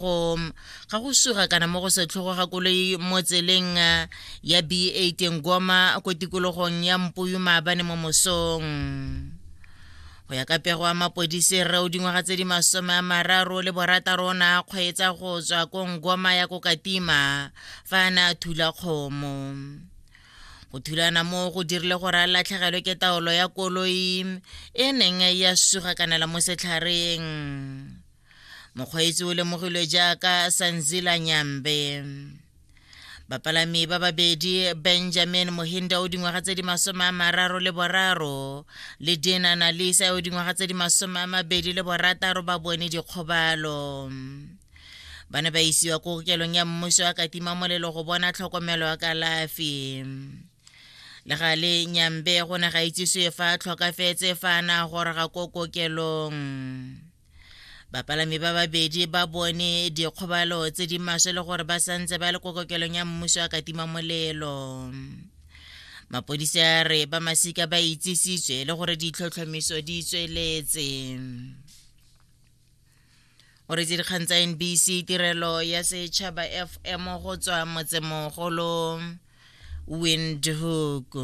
go ga go suga kana mo go setlhogo ga koloi mo tseleng eh, ya b8 ngoma ko tikologong ya mpuyu maabane mo mosong go ya ka pego wa mapodisi rre o dingwaga tse di masome a mararo le borataro o ne a kgweetsa go tswa ko ngoma ya ko katima fa a ne a thula kgomo go thulana mo go dirile gore a latlhegelwe ke taolo ya koloi e neng ya suga kanela mo setlhareng mokgweetsi o lemogilwe jaaka sanzila nyambe bapalami ba babedi benjamin mohinda o dingwaga tse di masome a mararo le boraro le dina nalisa o dingwaga tse di masome a mabedi le borataro ba bone dikgobalo ba ne ba isiwa ko kokelong ya mmuso ya katima molelo go bona tlhokomelo ya kalafi le ga le nyambe go ne ga itsiswe fa a tlhokafetse fa a na goroga ko kokelong bapalami ba babedi ba bone dikgobalo tse di maswe le gore ba santse ba le ko kokelong ya mmuso a katima molelo mapodisi a re ba masika ba itsisitswe le gore ditlhotlhomiso di tsweletse o re dikgang tsa nbc tirelo ya setšhaba fm go tswa motsemogolo windhoek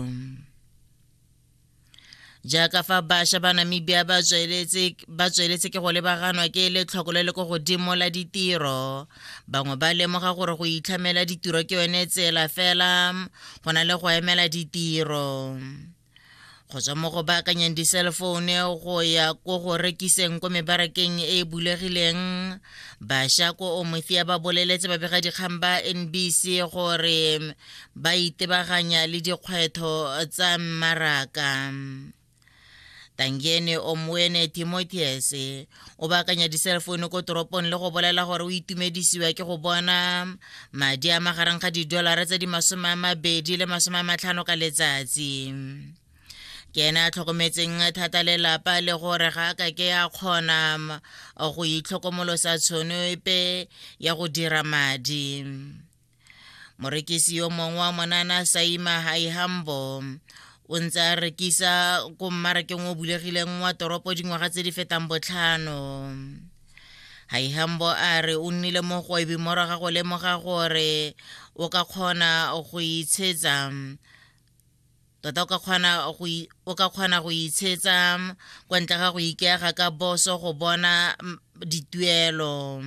jaaka fa bašwa ba namibia ba tsweletse ke go lebaganwa ke letlhoko le le ko godimo la ditiro bangwe ba lemoga gore go itlhamela ditiro ke yone tsela fela go na le go emela ditiro go tswa mo go baakanyang diselefoune go ya ko go rekiseng ko mebarakeng e e bulegileng bašwa ko omothia ba boleletse babegadikgang ba nbc gore ba itebaganya le dikgwetho tsa mmaraka tangene omwene timotheus o baakanya di-cell phone ko toropong le go bolela gore o itumedisiwa ke go bona madi a magareng ga didolara tse di masome a mabedi le masome a matlhano ka letsatsi ke ene a tlhokometseng thata lelapa le gore ga a ka ke ya kgona go itlhokomolosa tshono epe ya go dira madi morekisi yo mongwe wa monana saima haihambo o ntse a rekisa ko mmarakeng o bulegileng wa toropo dingwaga tse di fetang botlhano haihambo a re o nnile mo gwebi moraga go lemoga gore o ka kgona go itshetsa tota o ka kgona go itshetsa kwa ntle ga go ikeaga ka boso go bona dituelo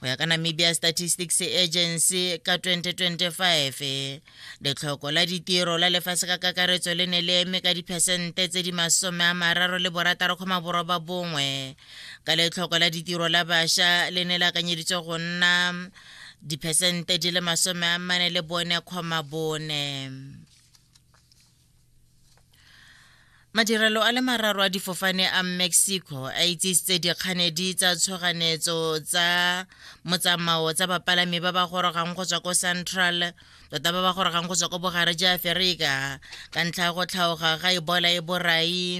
go ya ka namibia statistics agency ka 2025 letlhoko la ditiro la lefatshe ka kakaretso le ne le eme ka diphesente tse di masome a mararo le borataro kgoma boroba bongwe ka letlhoko la ditiro la bašwa le ne le akanyeditswe go nna diphesente di le masome a mane le bone kgoma bone madirelo a le mararo a difofane a mexico a itsisitse dikganedi tsa tshoganetso tsa motsamao tsa bapalami ba ba gorogang go tswa ko central tota ba ba gorogang go tswa ko bogare ja aferika ka ntlha ya go tlhaoga ga ebola e borai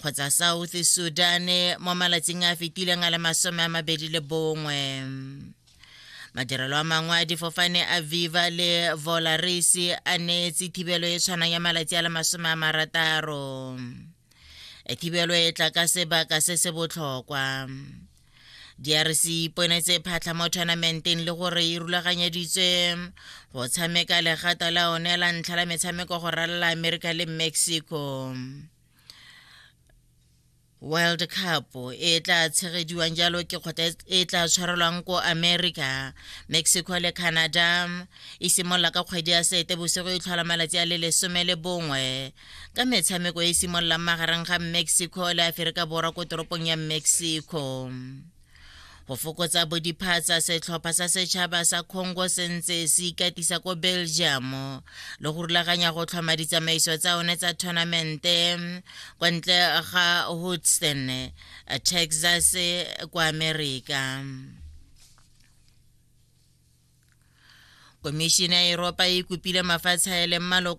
kgotsa south sudan mo malatsing a fetileng a le masome a mabedi le bongwe madirelo a mangwe a difofane a viva le volaris a neetse thibelo e tshwanang ya malatsi a le masome a marataro e thibelo e tla ka sebaka se se botlhokwa drc iponetse phatlha mo tournamenteng le gore e rulaganyeditswe go tshameka legata la one la ntlha la metshameko go ralala america le mexico world cup e tla tshegediwang jalo ke kgotla e tla tshwarelwang ko america mexico le canada e simolola ka kgwedi ya sete bosigo e tlhola malatsi a le lesome le bongwe ka metshameko e simololang magareng ga mexico le aferika borwa ko toropong ya mexico go fokotsa bodiphatsa setlhopha sa setšhaba sa congo se ntse se ikatisa ko belgium le go rulaganya go tlhoma ditsamaiso tsa one tsa tournamente kwa ntle ga houston texas kwa america komišene ya eropa e kopile mafatshe a e leng maloko